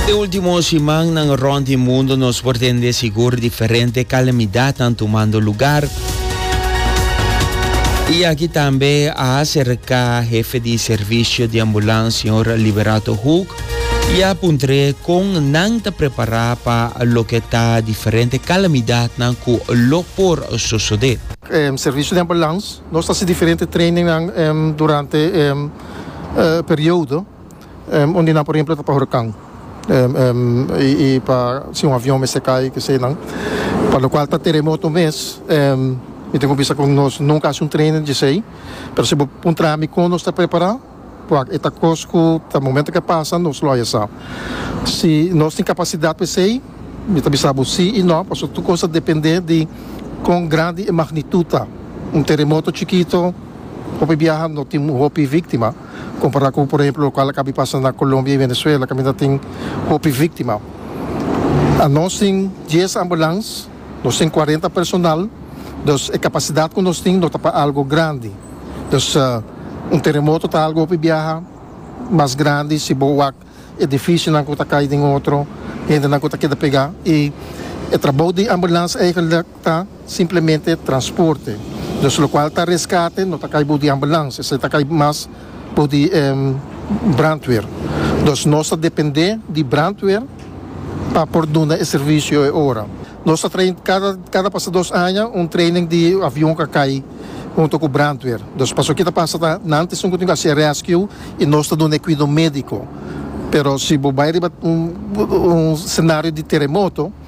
De último simannan rond di mundu nos por tende sigur diferente kalamidatnan tumando lugar. I aki tambe a aserká hefe di servisio di ambulans señor Liberato Hoek i a puntr'é kon nan ta prepará pa loke ta diferente kalamidatnan ku lo por sosodé. Servisio di ambulans nos ta hasi diferente trainingnan durante e periodo. un di nan por ehemplo ta pa hurakan y pa si un avion mester cay kese nan pa lo cual ta teremoto mes mi tin cu bisa cu nos nunca haci un training di esey pero si bo puntra mi con nos ta prepara bo wak eta cos cu ta momento cu a pasa nos lo haya sa si nos tin capacidad pa esey mi ta bisa bo si y no pasobra tur cos ta depende di con grandi e magnitud ta un teremoto chikito hopi biaha no tin hopi victima. Kompará ku por ehemplo lokual a kabi pasa na Kolombia i Venezuela kaminda tin hopi víktima. Anos tin dies ambulans, nos tin kuarenta personal, dus e kapasidat ku nos tin no ta pa algu grandi. Dus un teremoto ta algu hopi biaha mas grandi si bo wak edifishonan ku ta kai den otro, hendenan ku ta keda pegá i e trabou di ambulans eigenlijk. ta simplemente transporte, dus lokual ta reskate no ta kai bou di ambulans, esei ta kai mas bou di brandweer. Dus nos ta dependé di brandweer pa por duna e servisio e ora. Nos ta train kada kada pasa dos aña un training di avion ka kai hunto ku brandweer. Dus paso ki ta pasa ta nan ta esun kontinua haci rescue i nos ta duna e kuido médiko. Pero si bo bai riba un un senario di teremoto.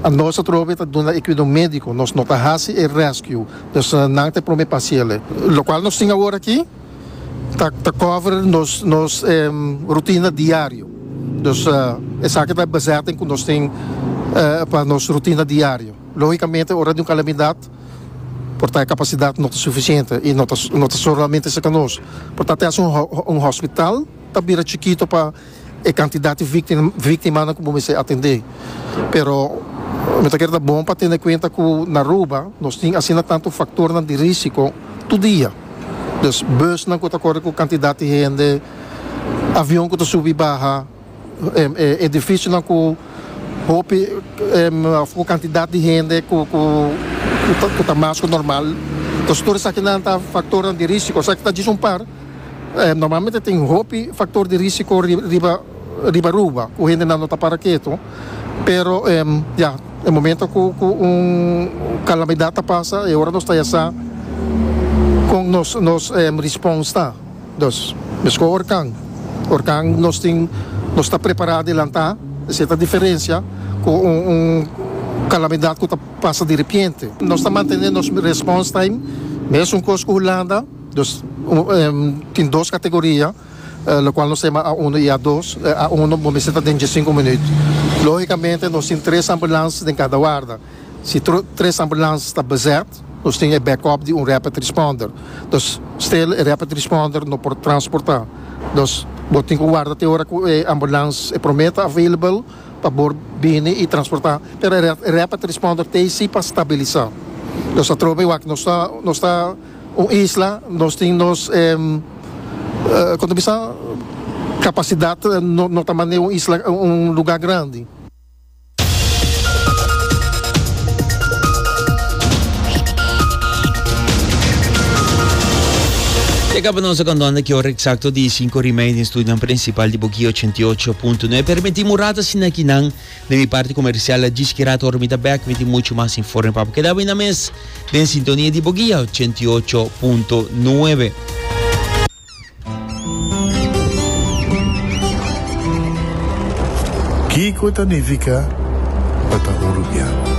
Anos atrobe e ta duna e cuidao medico, nos no ta haci e rescue, dus nan ta e prome pa haciele. Locual nos tin awor aki ta ta cover nos nos rutina diario, dus esaki ta e bezetting cu nos tin pa nos rutina diario. Logicamente ora di un calamidad por ta e capacidad no ta suficiente y no ta no ta solamente sa ca nos, por ta te haci un hospital ta bira chikito pa. e kantidat di víktimanan ku bo mester atendé. Pero mi ta kere ta bon pa tene kuenta ku na Aruba nos tin asina tantu faktornan di rísiko tur dia. Dus busnan ku ta kore ku kantidat di hende, avion ku ta subi i baha, edifisionan ku hopi òf ku kantidat di hende ku ta mas ku normal. Dus tur esakinan ta faktornan di rísiko. Esaki ta djis un par. Normalmente tin hopi factor di risico riba riba Aruba cu hendenan no ta para ketu pero ya e momento cu cu un calamidad ta pasa e ora nos ta ya sa con nos nos response ta dus mesco orkan orkan nos tin nos ta prepara adelanta esey ta diferencia cu un un calamidad cu ta pasa de repiente nos ta mantene nos response time mesun cos cu Hulanda. Dus tin dos kategoria lokual nos sema A uno i A dos, A uno bo mester ta den dje sinku minüt. Lógikamente nos tin tres ambulans den kada warda. Si tres ambulans ta bezèt nos tin e bèkòp di un rèpid rispònder. Dus stil e rèpid rispònder no por transportá. Dus bo tin ku warda te ora ku e ambulans e promé ta available pa bo bini i transportá. Pero e rèpid rispònder t'ei si pa stabilisá. Dus atrobe wak nos ta nos ta. Un isla nos tin nos e kon ta bisa kapasidat no ta mane un isla un luga grandi. E kaba nos a kandonde ki ora eksakto di e sinku rimei den studionan prinsipal di Bokio ochenta i ocho punto nue. Permití murata sina kinan. Na mi parti comercial a djis kira torna mi ta back mi tin mucho mas informe pa bo keda bini mes den sintonia di bo guia ochenta i ocho punto nuebe. Kiko ta nifica pa ta un rubian?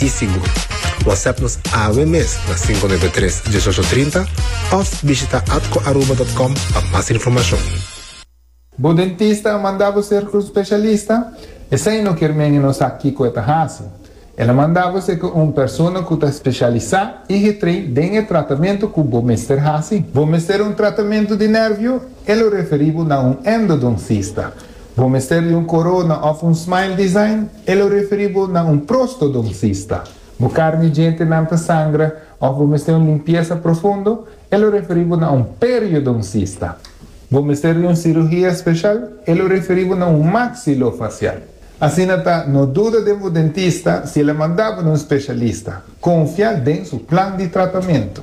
i sigur. Whatsapp nos awe mes na sinku nuebe tres dieshocho trinta òf bishita atcoaruba dòt com pa mas informashon. Bo dentista a manda bo ser tur speshalista? Esei no kier men e no sa kiko e ta hasi. El a manda bo ser ku un persona ku ta speshalisá i getrein den e tratamentu ku bo mester hasi. Bo mester un tratamentu di nervio? E lo referí bo na un endodoncista. Bo mester di un corona of un smile design? E lo referi bo na un prostodoncista. Bo carni djentenan ta sangra of bo mester un limpiesa profundo? E lo referi bo na un periodoncista. Bo mester di un cirugia special? E lo referi bo na un maxilofacial. Asina ta, no duda den bo dentista si el a manda bo na un specialista. Confia den su plan di tratamento.